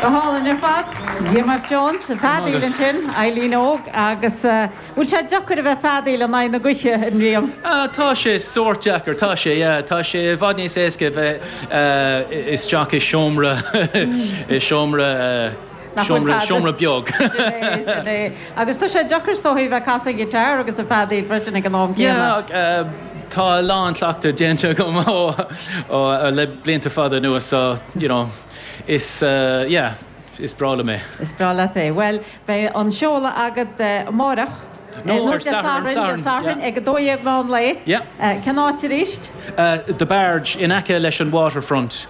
Go hálainn ar fad. Liam F. Jones ag feadaíl ansin, Eileen Óg agus bhfuil sé deacair a bheith feadaíl in aghaidh na gaoithe, a Liam? Tá sé sórt deacair, tá sé, yeah. Tá sé i bhfad níos éasca a bheith istigh i seomra, i seomra. nach bhfuil tada. Seomra beag. Sin é, sin é. Agus tá sé deacair is dócha a bheith ag casadh guitar agus ag feadaíl freisin ag an am céanna. Yeah, tá a lán cleachtaidh déanta agam le blianta fada anuas so, you know, is, yeah, is breá liom é. Is breá leat é. Bhuel, beidh an seoladh agat amáireach. Nó ar Satharn, Dé Sathairn, ag a dó dhéag meán lae. Yeah. Cén áit arís? The Barge, in aice leis an Waterfront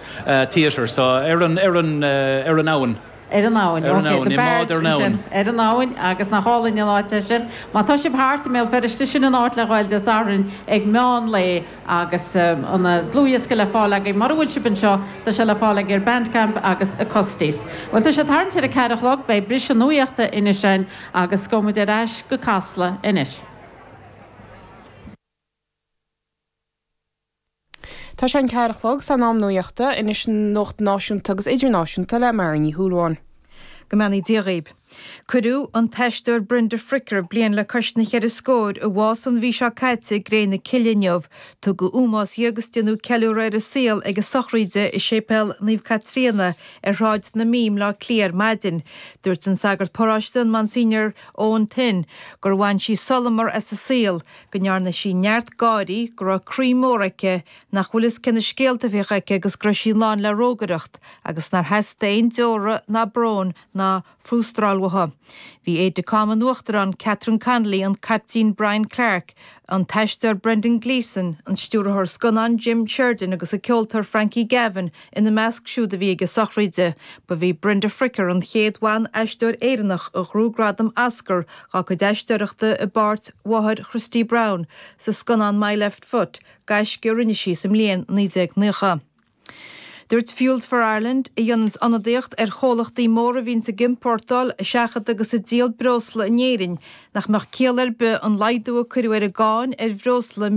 Theatre, so ar an, ar an, ar an abhainn. Ar an abhainn, ok. Ar an abhainn, i mbád ar an abhainn. Ar an abhainn agus nach álainn an áit é sin. Má tá sibh thart i mBéal Feirste, sin an áit le ghabháil Dé Sathairn ag meán lae agus an dlúthdhiosca le fáil agaibh. Mura bhfuil sibh anseo, tá sé le fáil ag ar Bandcamp agus Acoustis. Bhuel, tá sé ag tarraingt ar a ceathair a chlog, beidh briseadh nuachta anois ann Agus gabhfaidh muid ar ais go Casla anois. Tá sé an ceathair a chlog is in am nuachta, anois nuacht náisiúnta agus idirnáisiúnta le Máirín Ní Shúilleabháin. Go mbeannaí Dia dhaoib. Cuireadh an t-aisteoir Brenda Fricker a bhí bliain le cois na gceithre scór ag fáil bháis an mhí seo caite i gCré na Cille inniu. Tugadh ómós di agus déanadh ceiliúradh ar a saol ag a sochraid i Séipéal Naomh Caitríona ar Shráid na Mí i mBleá Cliath ar maidin. Dúirt an sagart paráiste, an Monsignor Eoin Thynne, gur bhain sí solamar as a saol, go ndearna sí neart gáirí, go raibh croí mór aici, nach bhfuil a fhios cé na scéalta a bhíodh aici agus go raibh sí lán le rógaireacht agus nár theastaigh aon deora ná brón ná fuastráil uaithi. Bhí aide de camp an Uachtaráin, Catherine Connolly, an Caiptín Brian Clarke, an t-aisteoir Brendan Gleeson, an stiúrthóir scannán Jim Sheridan agus an ceoltóir Frankie Gavin ina measc siúd a bhí ag an sochraid. Ba í Brenda Fricker an chéad bhan-aisteoir Éireannach a ghnóthaigh gradam Oscar dá cuid aisteoireachta i bpáirt mháthair Christy Brown sa scannán My Left Foot, gaisce a rinne sí sa mbliain 1990. Dúirt Fuels for Ireland, a dhéananns ionadaíocht ar chomhlachtaí móra a bhíonns ag iompórtáil, ag seachadadh agus ag díol breosla in Éirinn, nach mbeadh ciall ar bith an laghdú a cuireadh ar an gcáin ar bhreosla